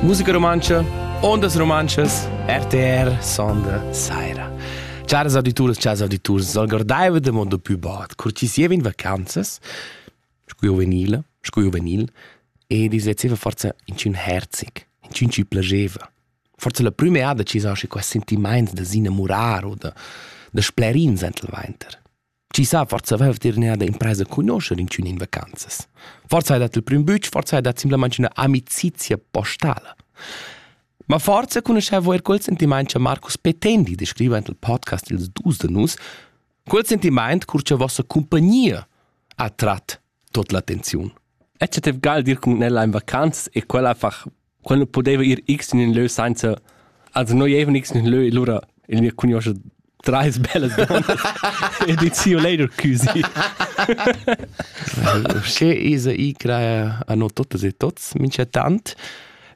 Musica romantscha, ondas romanschas, RTR sonda saira. Chars auditurs, chars auditurs, algordaiva de mondo più bot, cortisieva in vacanzas, scu juvenile, scu juvenil, e dislezzeva forza in cun herzic, in cun ci plageva. Forza la prüma ada ci sa schi quest sentimaint da s'innamurar o da, da splerin sent il vainter. Chi sa, forsa vev dir neada impresa cunoscher incun in vacanzas. Forsa hai dat il prim bütsch, forsa hai dat simplamaing üna amicizia postala. Ma forza cunoscevo er quel sentimaint che Marcus Petendi descriva in il podcast ils dus de nus, quel sentimaint cur che vossa compagnia ha trat tot l'attenziun. E che tev gal dir cun ella in vacanz e quella fach quel nu pudeva ir x in ün lö sainza also noi evan x in ün lö e lura il mia cugnuoscha trais bellas donnas e dit see you later cusy Usché isa i crea a no totas e tots, minchatant.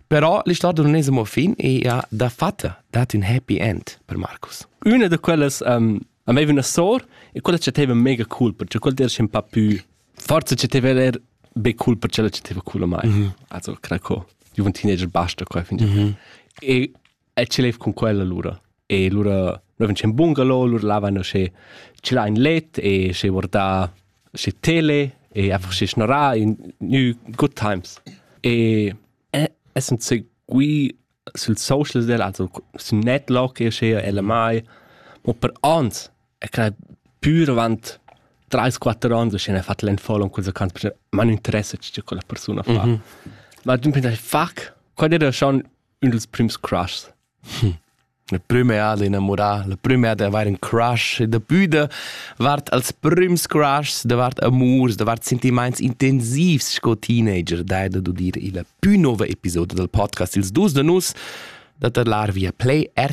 Però l'istorgia non es amo fin e ha da fatta dat ün happy end per Marcus. Üna da quellas um, aveva una sor e quella chatteva mega cool perché quella era un pa più forse ci teve er be cool per cella ci teve cool a mai. Mm -hmm. Also craco. Io un teenager basta qua fin. Mm -hmm. E e ce lev con quella lura. E lura noi vincem bungalow, lura lavano sche ci la in let e sche vorda sche tele e einfach sche schnora in new good times. E e sind seguì Sül social del also sün Netlock eschea ella mai, mo per ans è quai pür avant trais quatter ans uschè fat l'unfollow culs account perché m'ha ün interesse che quella persuna fa. Ma d'ün pign fuck, quai era schon ün dels prüms crushs. La prüma è ad inamurà, la prüma è d'avair ün crush e dapü da vart als prüms crushs, davart amurs, davart sentimaints intensivs sco teenager, dai da dudir illa pü nouva episoda dal podcast Ils dus da nus da tadlar via play RTL